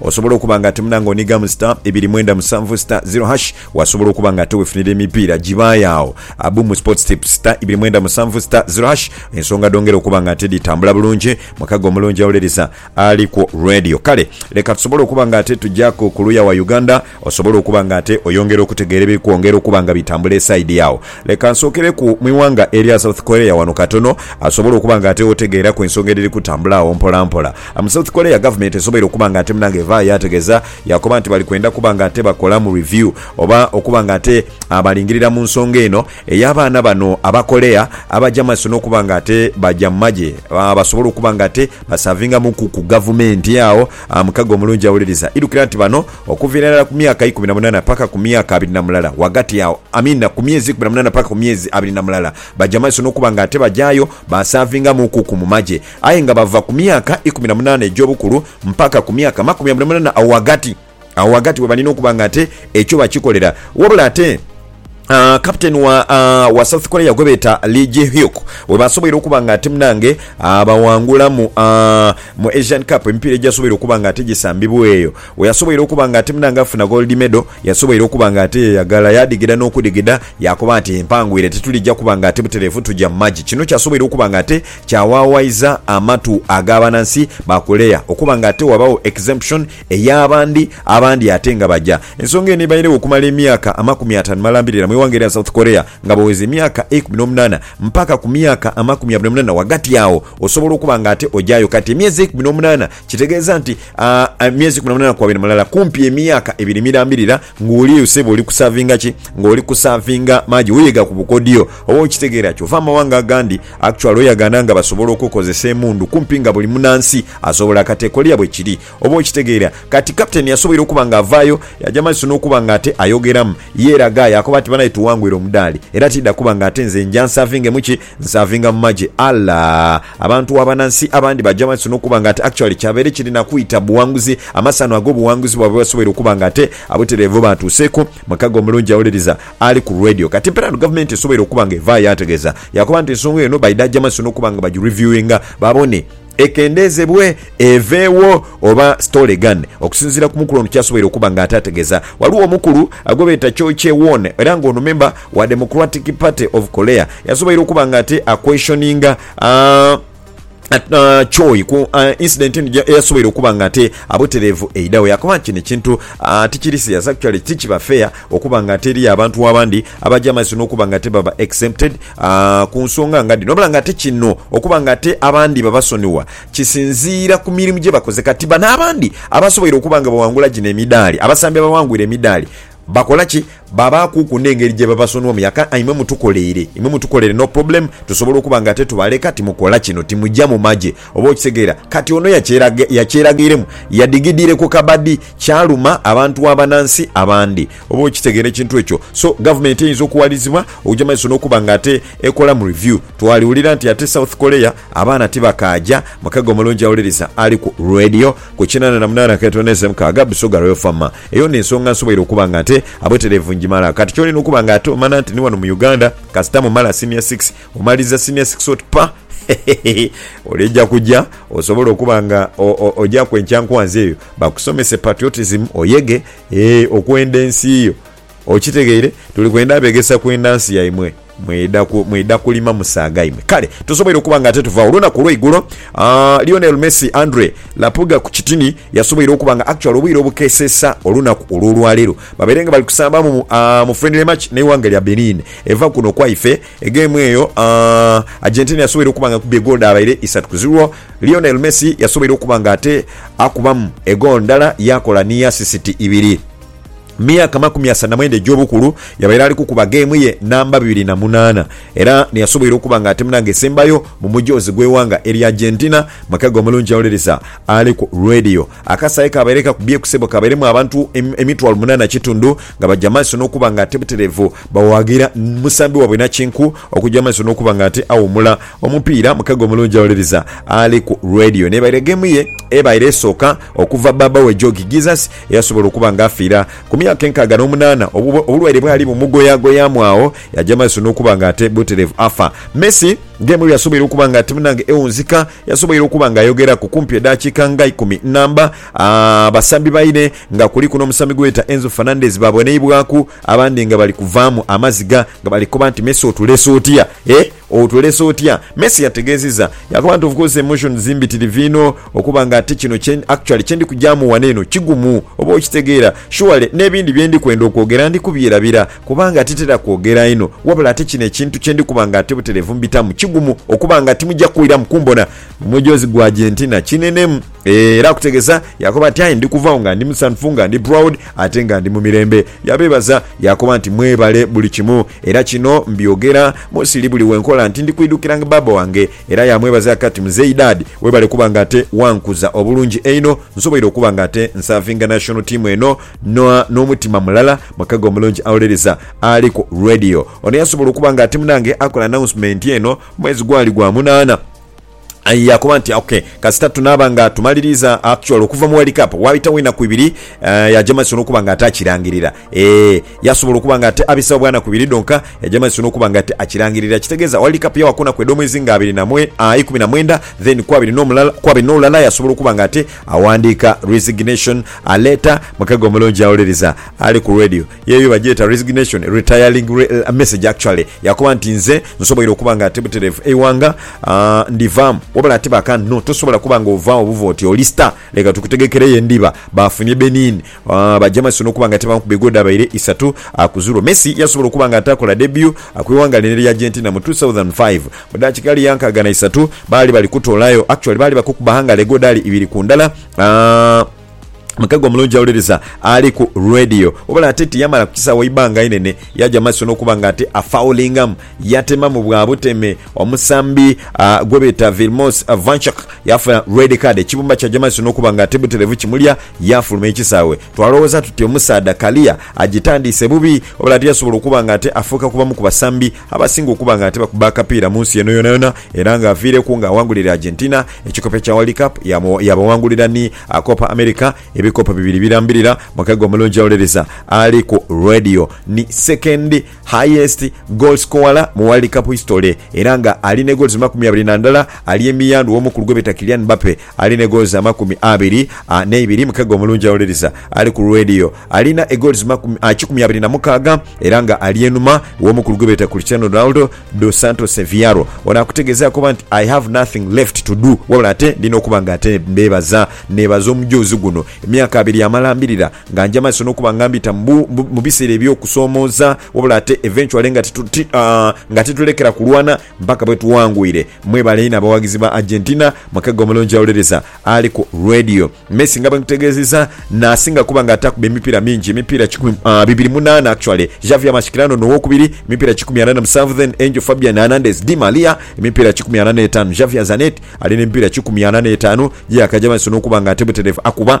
Osobola okuba nga ate munange onigamu star ibiri mwenda musanvu star zero hash wasobola okuba nga ate wefunira emipiira gibaayo agho abu mu sports tips star ibiri mwenda musanvu star zero hash ensonga dhongera okuba nga ate dhitambula bulungi mukago omulungi awulereza Alikwo Radio kale leka tusobole okuba nga ate tujaku kuluya wa Uganda Osobola okuba nga ate oyongera okutegeera ebiri kwongera okuba nga bitambula esaidi agho. Leka nsookereku mu ighanga erya South Korea ghano katono. Asobola okuba nga ate otegeeraku ensonga edhiri kutambula agho mpolampola. Mu South Korea gavumenti esoboire okuba nga ate munange evaayo yaategeza yaakoba nti bali kwenda kuba nga ate bakolamu review oba okuba nga ate balingirira mu nsonga eno ey'abaana bano Abakorea abaja mu maiso n'okuba nga ate baja mu magye basobole okuba nga ate basavingamuku ku gavumenti agho. Mukago omulungi awuliriza, idhukira nti bano. Okuviira irala ku myaka ikumi na munana paka ku myaka abiri na mulala, ghagati agho, amiina, ku myezi ikumi na munana paka ku myezi abiri na mulala, baja maiso n'okuba nga ate bajaayo baasaavingamuukuku mu magye. Aye nga bava ku myaka ikumi na munana egy'obukulu mpaka ku myaka amakumi abiri na munana, agho ghagati, agho ghagati we balina okuba nga ate ekyo bakikolera. Wabula ate. Uh, captain wa, uh, wa south korea gwebeeta lee jihyuk webasoboire okuba nga ate munange abawangula mu, uh, mu asian cup emipiira ejasoboire okuba nga ate gisambibwa eyo weyasoboire okuba nga ate munange afuna gold medal yasoboire okuba nga ate yeyagala yadigida n'okudigida yakoba nti empangwire tetulijja kuba nga ate butereevu tuja mu magi kino kyasoboire okuba nga ate kyawawaiza amatu ag'abanansi ba korea okuba nga ate wabawo exemption ey'abandi abandi ate nga baja. Ensonga eno ebairegho okumala emyaka amakumi ataanu malambirira mu ighanga erya South Korea nga bweweza emyaka eikumi n'omunaana mpaka ku myaka amakumi abiri n'omunaana wagati agho osobola okuba nga ate ojayo kati emyezi eikumi n'omunaana kitegeeza nti emyezi eikumi n'omunaana kwabiri mulala kumpi emyaka ebiri mirambirira nga oli eyo sebo oli kusavinga ki nga oli kusavinga maji weyega ku bukodyo oba okitegeera kyova amawanga agandi actually oyagana nga basobola okukozesa emundu kumpi nga buli munansi asobola kati e Korea bwekiri Oba okitegeera? Kati, kapiteeni yasoboire okuba nga avaayo, yaaja amaiso n'okuba nga ate ayogeramu. Yeeraga, yaakoba ati, Banae, tuwangwire omudaali. Era tiidha kuba nga ate nze nja nsaavinge mu ki? Nsaavinga mu magye. Ala! Abantu abana nsi abandi baaja amaiso n'okuba nga ate actually kyabaire kiri na kwita buwanguzi, amasanhu ag'obuwanguzi bwaibwe basoboire okuba nga ate abutereevu baatuuseku. Mukago omulungi awuliriza ali ku radio. Kati, mpeera eno gavumenti esoboire okuba nga evaayo yaategeeza, yaakoba nti ensonga eno baidha aja amaiso n'okuba nga bagireviewinga babone, ekendeezebwe eveewo oba stole egane. Okusinziira ku mukulu ono kyasoboire okuba nga ataategeeza, ghaligho omukulu gwebeeta Cho Che-won era nga ono memba wa Democratic Party of Korea yasoboire okuba nga ate a-questioninga Choi ku incident eno eyasoboire okuba nga ate abutereevu eidhagho. Yakoba nti kino ekintu tikiri serious, actually tikiba fair. Okuba nga ate eriyo abantu abandi abaja amaiso n'okuba nga ate baba exempted ku nsonga nga dhino. Wabula nga ate kino okuba nga ate abandi babasonigha kisinziira ku mirimu gye bakoze. Kati bano abandi abasoboire okuba nga baghangula gino emidaali, abasambi abaghangwire emidaali, bakola ki? Babaakuku n'engeri gye babasonighamu. Yaka, Imwe mutukoleire, imwe mutukoleire, no problem, tusobola okuba nga ate tubaleka timukola kino, timuja mu magye. Oba okitegeera? Kati ono yakyeraga, yakyeragairemu, yadigidiire ku kabadi, kyaluma abantu abanansi abandi. Oba okitegeera ekintu ekyo? So, gavumenti eyinza okuwalizibwa okuja mu maiso n'okuba nga ate ekolamu review. Twaliwulira nti ate South Korea abaana tibakaaja. Mukaga omulungi awuliriza ali ku Radio ku kinana na munaana akatono eze mukaaga, Busoga Royal Farm. Eyo n'ensonga nsoboire okuba nga ate abutereevu ngimala. Kati ky'olina okuba nga ate omana nti ni wano mu Uganda, kasita mumala Senior Six, Omaliza senior six oti pa hehehe oleja kuja osobole okuba nga ojaku enkyankwanzi eyo bakusomese patriotism oyege eeh okwenda ensi yo okitegeire tuli kwenda begesa kwenda nsi yaimwe mwida mwida kulima musaaga imwe kale tosoboire okuba nga ate tuvagho olunaku olweigulo aah Lionel Messi Andre Lapuga ku kitini yasoboire okuba nga actually obwire obukesesa olunaku olwolwalero babaire nga bali kusambamu aah mu friendly match neighanga lya Benin eva kuno kwaife Egeemu eyo, Argentina yasoboire okuba nga ekubye goolo dhaabaire isatu ku zirwo. Lionel Messi yasoboire okuba nga ate akubamu egoolo ndala yaakola ni asisiti ibiri. Mu myaka amakumi asatu na mwenda egy'obukulu, yabaire ali kukuba geemu ye namba bibiri na munaana era niyasoboire okuba nga ate munaanga esembayo mu mujoozi gw'eighanga erya Argentina mu kaga omulungi awuliriza aliku Radio. Akasaayi kaabaire kakubye ku sebo kaabairemu abantu emitwalo munana na kitundu nga baja maiso n'okuba nga ate butereevu bawaagira musambi waabwe nakinku okuja maiso n'okuba nga ate awuumula omupiira mukago omulungi awuliriza ali ku Radio. N'ebaire geemu ye ebaire esooka okuva bbaabba we Joogi Jesus eyasobola okuba nga afiira ku myaka enkaaga n'omunaana obulwaire bwali bumugoyaagoyaamu agho yaja maiso n'okuba nga ate butereevu afa. Messi geemu yasoboire okuba nga ate munange ewunzika. Yasoboire okuba nga ayogeraku kumpi edhakiika nga ikumi nnamba abasambi baine nga kuliku n'omusambi gwe beeta Enzo Fernandez baabonheibwaku abandi nga bali kuvaamu amaziga nga bali koba nti Messi otulese otya eh otulese otya? Messi yategeezizza yaakoba nti Of course emotions mbitirivu inho okuba nga ate kino kye actually kye ndi kugyamu wano eno kigumu oba okitegeera surely n'ebindi bye ndi kwenda okwogera ndi kubyerabira Kubanga titera kwogera inho, wabula ate kino ekintu kye ndi kuba nga ate butereevu mbitamu, kigumu okuba nga timuja kwiramu kumbona. Omwejoozi gwa gye nti na kinenemu. Ee, era akutegeza, yaakoba ati, Aye ndi kuva agho nga ndi musanhufu, nga ndi proud, ate nga ndi mu mirembe. Yabeebaza, yaakoba nti, Mwebale buli kimu. Era kino mbyogera mu siri buli we nkola nti ndi kwidukiranga bbaabba wange. Era yaamwebaza aka ati, Muzeeyi Dad, webale kuba nga ate wankuza obulungi einho, nsoboire okuba nga ate nsaavinga national team eno, Noa n'omutima mulala, mukago omulungi awolereza ali ku Radio. Ono yasobola okuba nga ati munange akola announcement eno mwezi gwali gwa munaana. Aye yakoba nti ok, kasita tunaaba nga tumaliriiza actually okuva mu World Cup, waabitawo enaku ibiri eh, yaja maiso n'okuba nga ate akirangirira. Eeh, yasobola okuba nga ate abisawo bwanaku ibiri dhonka, yaja maiso n'okuba nga ate akirangirira. Ekitegeeza World Cup yawa ku naku edh'omwezi nga abiri na mwe, ah, ikumi na mwenda, then ku abiri n'omulala, ku abiri n'olulala yasobola okuba nga ate Awandiika resignation, aleeta mukege omulungi awuliriza ali ku radio. Yeeyo bagyeta resignation, retiring message actually, yakoba nti, Nze nsoboire okuba nga ti butereevu eighanga ndivaamu, wabula ate bakano tosobola kuba nga ovaawo buva oti oli star, leka tukutegekereyo endhiba. Baafunye Benin Bajja maiso n'okuba nga tebamu ku bigwo dhabaire isatu akuzulwa, Messi yasobola okuba nga ataakola debut kw'eighanga lino erya Argentina mu two thousand and five. Mu dakiika ghali yankaaga na isatu baali bali kutoolayo, actually baali bakukuba ghangala egwo dhaali ibiri ku ndala. Mukago omulungi awuliriza ali ku Radio, wabula ate tiyamala ku kisaawe ibbanga inene, yaja maiso n'okuba nga ate afaulingamu. Yatemamu bwa buteme omusambi gwe beeta Vilmos Vanchuk yaafuna red card ekibumba kya Jamas n'okuba nga ti butereevu kimulya yaafuluma ekisaawe. Twalowooza tuti omusaadha kaliya agitandiise bubi wabula ate yasobola okuba nga ate afuuka ku bamu ku basambi abasinga okuba nga ate bakuba akapiira mu nsi eno yonayona era nga aviireku nga awangulira Argentina ekikopo ekya World Cup yaabawangulira ni Copa America ebikopo bibiri birambirira. Mukaga omulungi awuliriza ali ku Radio ni second. highest goal scorer mu World Cup history era nga ali ne goals makumi abiri na ndala, ali emiyandhu w'omukulu gwebeeta Kylian Mbappe ali ne goals amakumi abiri n'eibiri. Mukegga omulungi awuliriza ali ku Radio alina e goals kikumi abiri na mukaaga era nga ali enhuma w'omukulu gwebeeta Cristiano Ronaldo dos Santos Avearo. Ono akutegezaaku oba nti I have nothing left to do wabula ate ndina okuba nga ate mbeebaza, neebaza omujoozi guno emyaka abiri amalambirira. Nga nja maiso nokuba nga mbita mu biseera ebyokusomooza, wabula ate eventually nga titulekera kulwana mpaka bwetuwangwire. Mwebale inho abawagizi ba Argentina mukaga omulungi awulereza ali ku Radio. Messi nga bwenkutegeezeza nasinga kuba nga atakuba emipiira mingi, emipiira kikumi bibiri munaana actually, Xavier Mascherano nowokubiri emipiira kikumi ana na musanvu then Angel Fabian Hernandez Di Maria emipiira kikumi ana n'etaanu Xavier Zanetti alina emipiira kikumi ana n'etaanu ye yakaja maiso nokuba nga ate butereevu akuba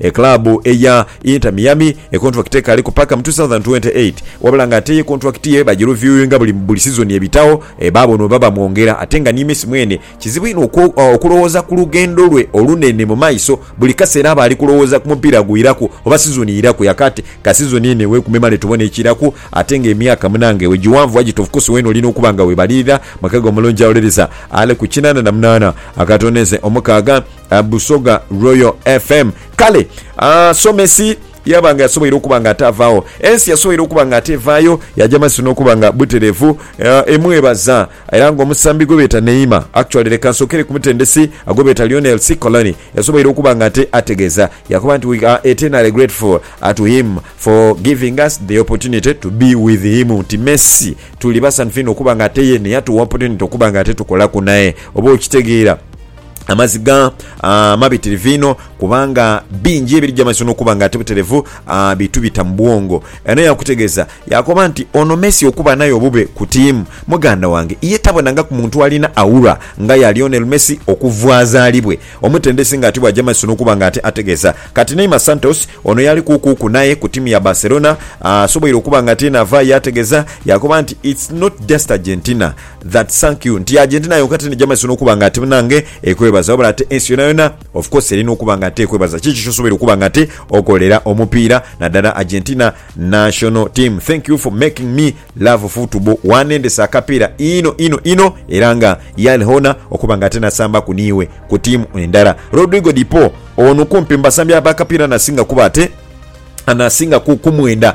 Ekilabu eya Inter Miami ekontwakiti ekaali ku paka mu 2028 wabula nga ate ye kontwakiti ye bagiruviuinga buli buli sizoni ebitagho baabona oba bamwongera ate nga ni Messi mwene kizibu inho okulowooza ku lugendo lwe olunene mu maiso buli kaseera aba ali kulowooza ku mupiira gwiraku oba sizoni iraku yakati ka sizoni eno ewekumemale tubone ekiraku ate nga emyaka munange we giwanvu wagita ofcourse weena olina okuba nga webalirira mwekage omulungi awolereza ali ku kinana na munana akatono eze omukaaga Busoga Royal FM. Kale Somesi yaba nga yasoboire okuba nga ate avaagho, ensi yasoboire okuba nga ate evaayo, yaja maiso n'okuba nga butereevu. Emwebaza era nga omusambi gwe beeta Neymar, actually leka nsookere ku mutendesi gwe beeta Lionel Cicolani, yasoboire okuba nga ate ategeeza yaakoba nti, We are eternally grateful to him for giving us the opportunity to be with him, nti Messi tuli basanhufu inho okuba nga ate ye ni yatuwa opportunity okuba nga ate tukolaku naye. Oba okitegeera? amaziga amabitirivu inho kubanga bingi ebirija mu maiso n'okuba nga ate buterevu bi tubita mu bwongo. Eno yaakutegeeza yaakoba nti, Ono Messi okuba naye obube ku tiimu, muganda wange, ye tabonangaku muntu alina aura nga ya Lionel Messi okuva azaalibwe. Omutendesi nga ati bw'aja mu maiso n'okuba nga ate ategeeza. Kati Neymar Santos ono yaali kuukuuku naye ku tiimu ya Barcelona asoboire okuba nga ate naavaayo yaategeeza yaakoba nti, It's not just Argentina. That thank you nti agent nayo nka tene jamazisa nokuba nga ate munange ekwebaza wabula ate ensi yona yona of course erina okuba nga ate ekwebaza kiki kyosobwoire okuba nga ate okolera omupiira nadala Argentina national team thank you for making me love football wanendesa akapiira inho inho inho era nga yal honour okuba nga ate nasambaku niiwe ku team endala Rodrigo de Paul ono kumpi mubasambi abakapiira anasinga kuba ate anasinga ku kumwenda.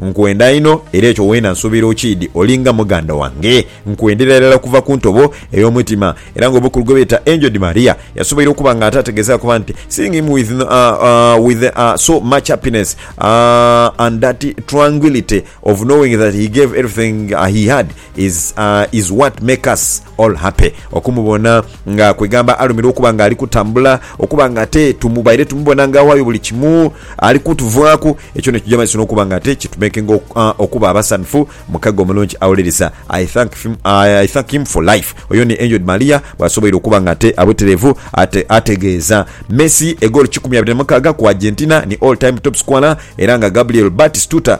Nkwenda inho, era ekyo weena nsuubira okiidhi. Oli nga muganda wange. Nkwendera irala kuva ku ntobo ey'omutima. Era nga obukulu gwe beeta Angel Di Maria yasoboire okuba nga ate ategeeza kuba nti, Seeing him with with so much happiness and that tranguility of knowing that he gave everything he had, Is is what make us all happy okumubona nga kwegamba alumirwa okuba nga ali kutambula okuba nga ate tubaire tumubona nga awayo buli kimu ali kutuvaaku ekyo nekija maiso nokuba nga ate kitumekinga okuba abasanhufu mukaga omulungi awuliriza I thank him I thank him for life oyo ni Angel Maria bwasoboire okuba nga ate abuterevu ate ategeeza Messi egoolo kikumi abiri na mukaaga ku Argentina ni all time top scorer era nga Gabriel Batistuta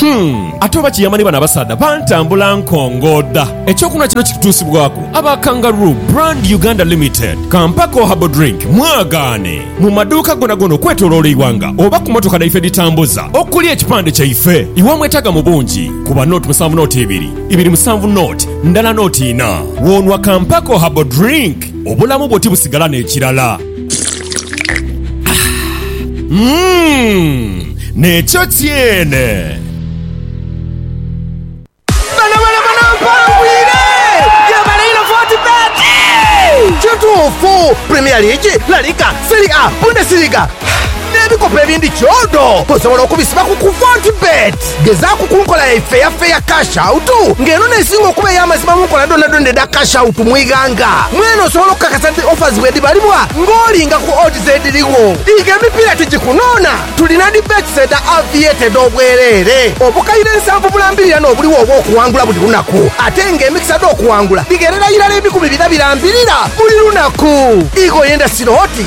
Humm! Ate oba kiyamba ni bano abasaadha bantambula nkongooda. Ekyokunhwa kino kitutuusibwaku aba Kangaroo Brand Uganda Limited, ka mpako Herbal Drink mwagaane mu maduuka gonagona okwetoloola eighanga oba ku motoka dhaife edhitambuza okuli ekipande kyaife. Iwe mwetaaga mu bungi, kuba note musanvu note ibiri, ibiri musanvu note ndala note inha. Wonhwa ka mpako Herbal Drink, obulamu bwo tibusigala n'ekirala. Nekyo kyene. Bano bano bano mpangwire! Gyebale inho Fortebet! Kituufu, Premier League, La Liga, Serie A, Bundesliga n'ebikopo ebindi kyodo osobola okubisiba ku ku Fortebet. Gezaaku ku nkola yaife eya Fair Cash Out nga eno n'esinga okuba ey'amazima mu nkola dhonadhona edha Cash Out mu ighanga. Mwene osobola okukakasa nti offers bwedhibalibwa ng'olinga ku odds edhirigho. Diiga emipiira tigikunoona, tulina dhi bets edha Aviator edh'obwereere, obukaire nsanvu bulambirira n'obuligho obw'okuwangula buli lunaku ate nga emikisa dh'okuwangula dhigherera irala ebikumi bina birambirira buli lunaku. Ighoyo endasiro oti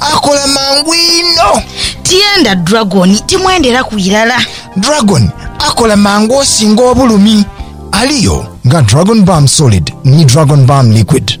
Akola mangu inho. Tienda Dragon, timwenderaku irala. Dragon akola mangu osinga obulumi. Aliyo nga Dragon Balm Solid ni Dragon Balm Liquid.